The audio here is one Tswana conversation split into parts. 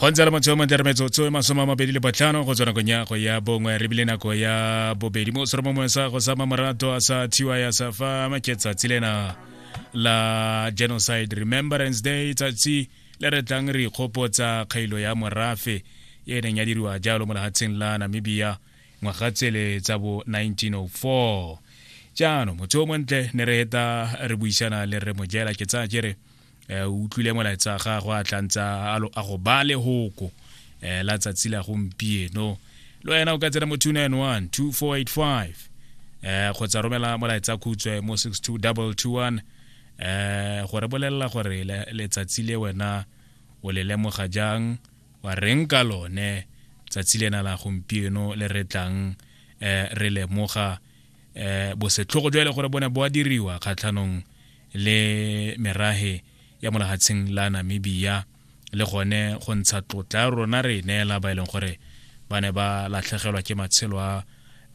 go ntse le motse o montle re metsotso e masome a mabedi le botlhano go tswa nakong ya go ya bongwe re bile nako ya bobedi mo sero mongwe sa go sama morato a sa thiwa ya sa fa maketsatsi lena la genocide remembrance day tsatsi le re tlang re ikgopotsa kgailo ya morafe e neng ya diriwa jalo mo lehatsheng la namibia ngwaga tsele tsa bo 1904 jaanong motho o montle ne re eta re buisana le re mojela ke tsaya kere eh, o utlwile molaetsa gagwe a tlantsa a go ba lehoko um eh, la tsatsi la gompieno le wena o ka tsena mo 291 2485 um eh, kgotsa romela molaetsa khutswe mo 62221 um gore bolelela gore letsatsi le wena o le lemoga jang wa reng ka lone tsatsi lena la gompieno le re tlang um re lemoga um bosetlhogo jo e le gore bo ne bo a diriwa kgatlhanong le merage ya molagatsheng la namibia le gone go ntsha tlotla ya rona re e neela ba e leng gore ba ne ba latlhegelwa ke matshelo a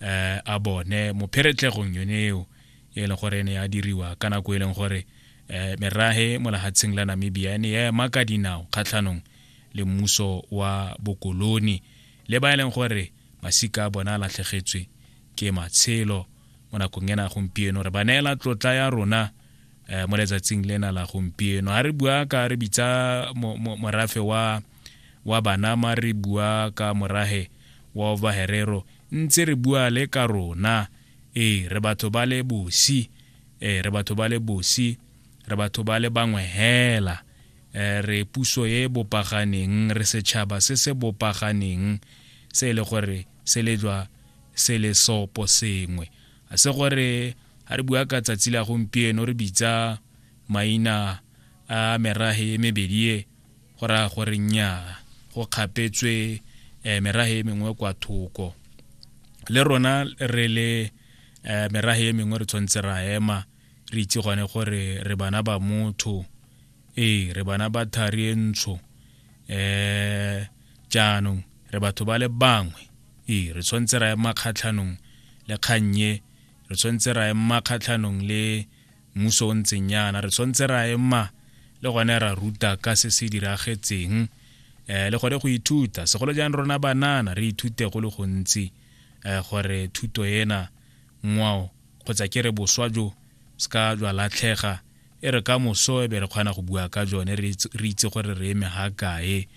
um a bone mo pheretlhegong yone eo e leng gore e ne ya diriwa ka nako e leng gore um merage molagatsheng la namibia e ne ya ema ka dinao kgatlhanong le mmuso wa bokoloni le ba e leng gore masika a bona a latlhegetswe ke matshelo mo nakong ena gompieno re ba neela tlotla ya rona um mo letsatsing lena la gompieno ga re bua ka re bitsa morafe wa wa banama re bua ka morage wa ovaherero ntse re bua le ka rona ee re batho ba le bosi ee re batho ba le bosi re batho ba le bangwe hela Eh, re puso e bopaganeng re setšhaba se se bopaganeng se e le gore se lejwa se le sopo sengwe a se gore ga re bua ka tsatsi la gompieno re bitsa maina a merahe e mebedi e go raya gore nnyaa go kgapetswe um merahe e mengwe kwa thoko le rona re le um merahe e mengwe re tshwanetse ra ema re itse gone gore re bana ba motho ee re bana ba thari e ntsho um jaanong re batho ba le bangwe ee re tshwanetse ra ema kgatlhanong le kgannye re tshwanetse ra ema kgatlhanong le mmuso o ntseng yana re tshwanetse ra ema le gone ra ruta ka se se diragetseng um le gone go ithuta segolo jang rona banana re ithute go le gontsi um gore thuto ena ngwao kgotsa ke re boswa jo se ka jwa latlhega e re ka moso e be re kgona go bua ka jone re itse gore re eme ga kae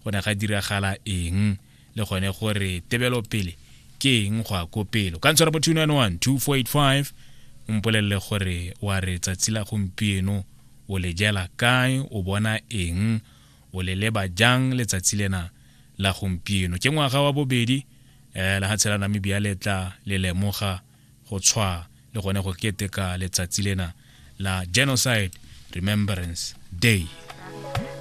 go ne ga diragala eng le gone gore tebelo pele ke eng go a ko pelo ka ntshwara mo 291 o mpolelele gore wa re tsatsi la gompieno o le jela kae o bona eng o le leba jang letsatsi lena la gompieno ke ngwaga wa bobedi um lehatshe la namibia le tla le lemoga go tshwa le gone go keteka letsatsi lena la genocide remembrance day